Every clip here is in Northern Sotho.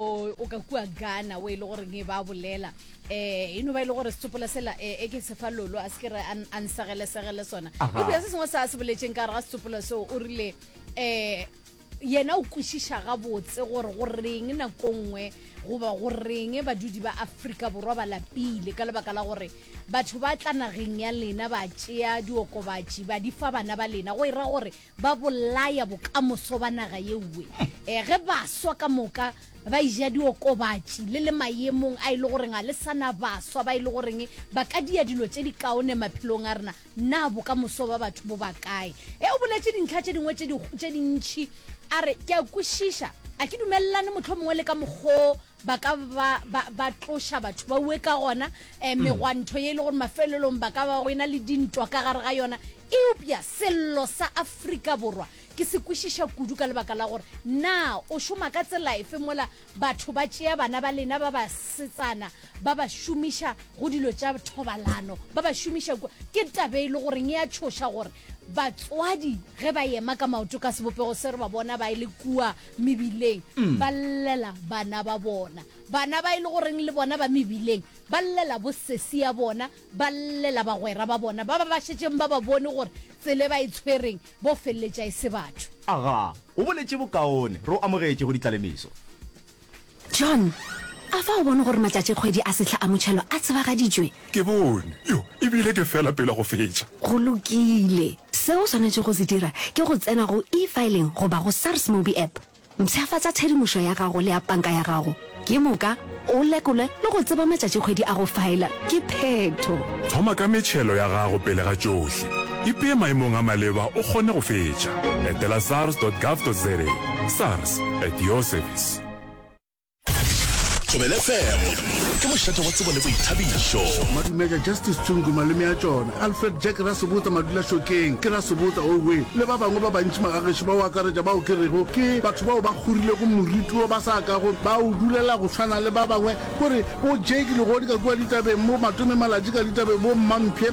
o ka kua gana o e le gore nge ba bolela um e no ba e le gore setsopola sela e eh, ke sefa lolo a se ke re a nsegelesegele sona ebile se sengwe se a se boletseng ka gare ga setsopola seo o rile um yena o kwešiša gabotse gore go reng nako nngwe goba go reng badudi ba aforika borwa ba lapile ka lebaka la gore batho ba tla nageng ya lena ba tšea diokobatši ba di fa bana ba lena go e ra gore ba bolaya bokamoso ba naga yeoe e, ge baswa ka moka ba ija diokobatši le le mayemong a e le goreng a le sana baswa ba e le goreng ba ka dia dilo tše di kaone maphelong a rena na bokamoso ba batho bo ba kae e o boletše dintlha tše dingwe tše dintšhi a re ke a kwešiša a ke dumelelane mohlomongwe le ka mokgoo ba ka ba, ba, ba tloša batho ba ue ka gona um megwanto ye e le gore mafelelong ba ka ba go ena le dintwa ka gare ga yona eupša sello sa afrika borwa ke se kwešiša kudu ka lebaka la gore na o šoma ka tsela efe mola batho ba tšea bana ba lena ba basetsana ba ba šomiša go dilo tša thobalano ba ba šomiša kua ke tabe e le goreng e a tšhoša gore batswadi ge ba ema ka maoto ka sebopego se re ba bona ba e le kua mebileng mm. ba llela bana ba bona bana ba e le goreng le bona ba mebileng ba llela bosesi ya bona ba llela bagwera ba bona ba ba ba šetšeng ba ba bone gore tsele ba e tshwereng bo feleletša e se batho aga o boletše bokaone re o amogetše go ditlalemiso John, a fa o bone gore matšatšikgwedi a sehla a motšhelo a tsebagaditšwe? Ke bone. Yo, e bile ke fela pele go fetša. Go lokile. Seo o swanetšego go se dira ke go tsena go E-filing goba go SARS Mobi App. Mpshafatša tshedimošo ya gago le ya panka ya gago ke moka o lekolwe le go tseba matšatšikgwedi a go faela ke phetho. Thoma ka metšhelo ya gago pele ga tšohle. Ipee maemong a maleba o kgone go fetša. Etela sars.gov.za, sars at your service. Thobela FM ke mošate wa tsebo le boithabišo. Madumeja Justice Tsungu, malome a tšona, Alfred Jack Rasebotsa Madulašokeng, ke Rasebotsa Owe, le ba bangwe ba bantši magagešo ba o akaretša bao ke rego ke batho bao ba kgorilego moriti wo ba sa kago ba o dulela go swana le ba bangwe. Gore bo Jake Legodi ka kua ditabeng, bo Matome Malatši ka ditabeng, bo Mmampshe,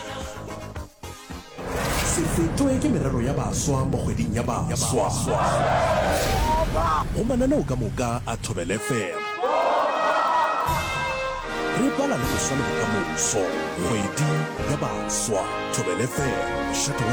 Se fetwe ke merero ya baswa mo kgweding ya baswa. Go mananeo ka moka a Thobel FM. Re bala le go swa le bokamoso, kgwedi ya baswa, Thobel FM.